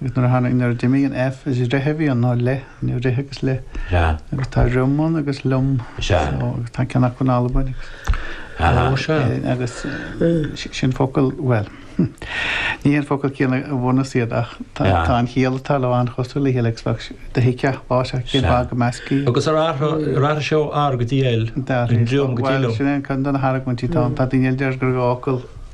Agus nuair a tháinig, nuair a d'imigh an F, is ri a bhí ann, ná le, ri agus le. Sea. Agus tá riom ann agus liom. Sea. So, agus tá ceann acu in Albain agus. Aha. Ó, sea. Eh, agus eh, sin focal, bhuel, ní haon focal céanna ó bhunús iad ach tá, Sea. tá an chiall atá leo an-chosúil le chéile agus bheadh sé, dtuigeann tú sin é cén Sea. fáth gur meascadh iad. Agus ar athraigh, ar athraigh sé ó R go dtí L, dar, ón riom go dtí bhuel, liom. sin é an ceann de na hargúintí, tá, tá daoine eile a deir gur dhá fhocal.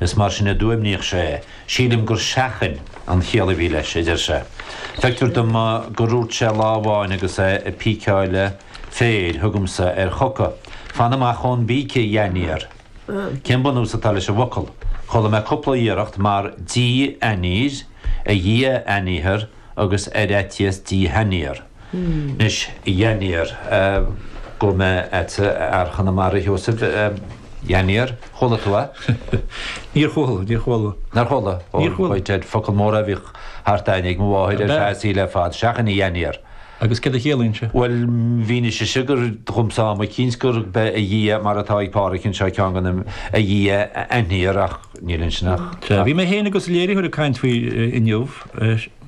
Is mar sin a d'fhuaimníodh sé. Sílim gur seachain an chiall a bhí leis, a deir sé. Feictear dom gur dhúirt sé lá amháin agus é ag píceáil féir, thugamsa ar choca. Fan amach ón bpíce, dhainiar. Cén bunús atá leis an bhfocal? Chuala mé cúpla iarracht mar Dia aniar, A Dhia aniar agus ar fhaitíos Dia aniar. Anois, dhainiar, go mba ait fhear Chonamara thú a Sheosaimh, dhainiar, ar chuala tú é? Níor chuala, níor chuala. Nár chuala? Níor chuala. Ó, dad, focal mór é a bhíodh thart a'inn ag mo mháthair ar feadh a saoil ar fad, seachain dhainiar. Agus cad a chiallaíonn sé? Bhuel, mhínigh sise gur, dhomsa am eicínt, gurb é a Dhia, mar atá ag Páraic anseo, ceann go na, a Dhia aniar ach níl ansin ach. Sea. Bhí mé féin agus an léiritheoir ag caint faoi inniu,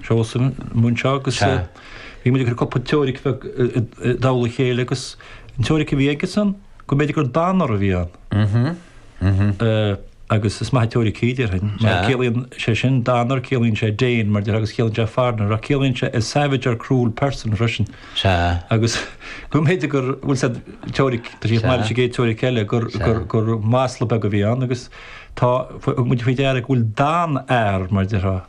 Seosamh, an múinteoir, agus. Sea. Bhí muid ag cur cúpla teoiric bheag i dtoll a chéile agus an teoiric a bhí aigesan go mb'fhéidir gur Danar a bhí ann. Agus is maith an teoiric í, déarfainn, mar ciallaíonn sé sin Danar, ciallaíonn sé Dane, mar déarfá, agus ciallaíonn sé foreigner, ach ciallaíonn sé a savage or cruel person freisin. Sea. Agus go mb'fhéidir gur, bhuel sin teoiric, tá sí chomh maith leis an gcéad teoiric eile, gur, gur, gur masla beag a bhí ann agus tá, thug muid faoi deara go bhfuil Dan-ear, mar déarfá,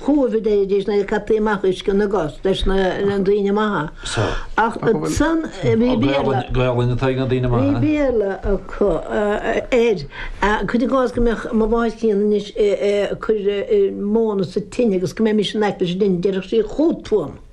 Chuiridís nuair a caití amach uisce na gcos leis na daoine maithe ach ansan bhí Béarla. Ní bhíodh Béarla acu air. Cuir i gcás go mbeadh mo mháthair chríonna anois ag cur móna sa tine agus go mbeadh mise in aice leis an dtine, déarfadh sí 'chugat, a púca'.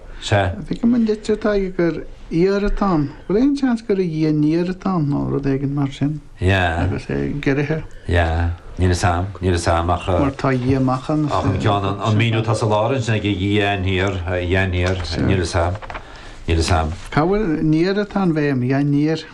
Sea. Feicim an litir atá aige gur iarr atá ann. Bhfuil aon seans gur a Dhia aniar atá ann nó rud éigin mar sin? Yeah. Agus é giorraithe. Yeah. Níl 'fhios a'm. Níl 'fhios a'm ach. Mar tá a Dhia amach ann is. Ach an ceann, an míniú atá sa lár ansin ag a Dhia aniar, a Dhia aniar, níl 'fhios a'm. Níl 'fhios a'm. Cá bhfuil, ar an iar atá an bhéim, yeah aniar.